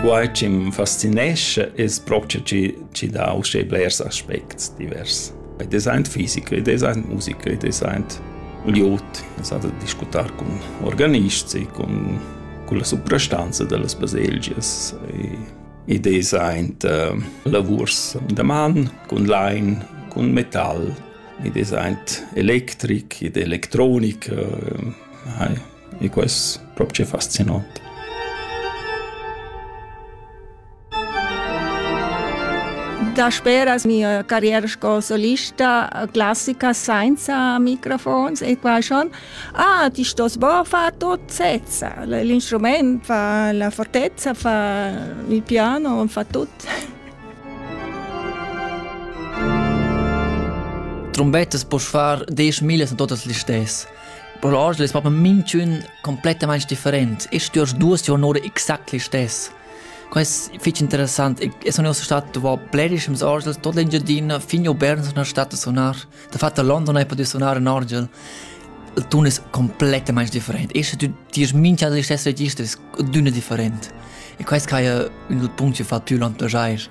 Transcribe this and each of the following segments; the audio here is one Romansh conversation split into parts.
Quai chi m'fascinescha es propcha chi chi dà uschè blers aspects divers. Ed es aint fisica, ed es aint musica, ed es aint glieud. Es da discutar cun organists e cun culla suprastanza da las baselgias e ed es aint uh, lavurs da man cun lain, cun metal, ed es aint electric ed electronica. Hai e quest propcha fascinant. Dasperas mia carriera sco solista classica senza microfons e qua schon ah ti stos bo far tot sezza l'instrument fa la fortezza fa il piano fa tut Trombettas poss far desch millas a totas listess Per oggi es propi minchün complettamaing different e stüers duos giornate exact listess. Quai es fich interessant. E sun uossa stat dovò blerischems orgels tot l'Engiadina fin a Bern sun stat a sunar. Dafat a London hai pudü sunar in orgel. Il tun es complettamaing different. Esche tü tierst mincha da listess registers, düna different. E quai es quai ün dal punct chi fa tü l'entusiast.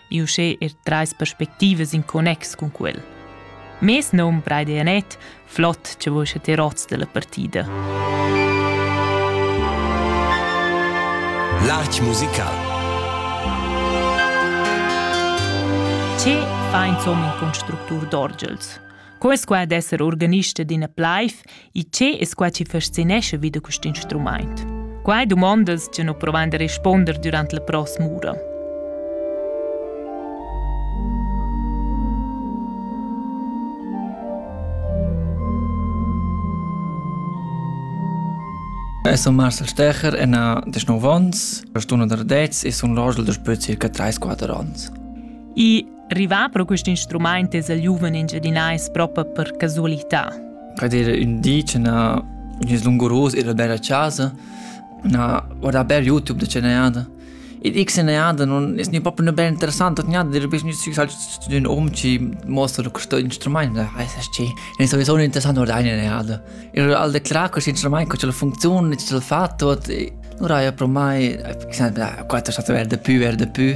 ni uschè er trais perspectivas in connex cun quel. Mes nom Braide Anet, flott che vos ti rots della partida. L'art musical. Ce fa insomma in constructur d'orgels? Co es qua d'esser organista d'ina plaiv e che es qua chi fascinescha vi da quist instrumaint? Qua dumondas che nu provan da risponder durant la pross'ura. Eu sun Marcel Stecher e na desnov ons. Sto da dets e sun l'orgel da spö circa 3-4 ons. E Rivà pro quist instrumaint es il giuven engiadinais propa per casualità. Ed era ün di che na gnüs lunguros ir al bel a casa, na guardà bel YouTube da che nejada. E dic se nejada non es ni proprio ne bel interessant, nejada dir bis gnüs fixar zu ün um ci mostra questo instrument, weiß ich ci. Ne sowieso un interessant guardà eine nejada. E al declara questo instrument co ce la funzione, ce l'ha fatto, e allora io pro mai fixar quattro stato verde più, verde più.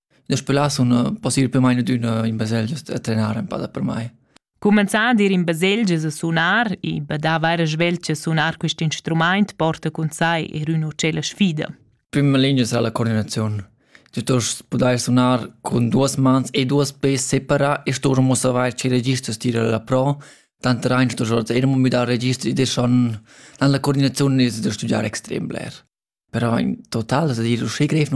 Daspö là sun pussibel main adüna in baselgia a trenar ëmpada per mai. Cumenzà ad ir in baselgia e sunar e badà vaira svelt che sunar quist instrumaint porta cun sai er üna ucella sfida. Prima linea sarà la coordinazione. Tu dost pudair sunar con duas mans e duas pes separa e sturmo savair che registro stira la pro, tant rein sto sorta e mi dà registro ed son dann la coordinazione ist da studiare extrem bler. Però in total es da dir uschè grev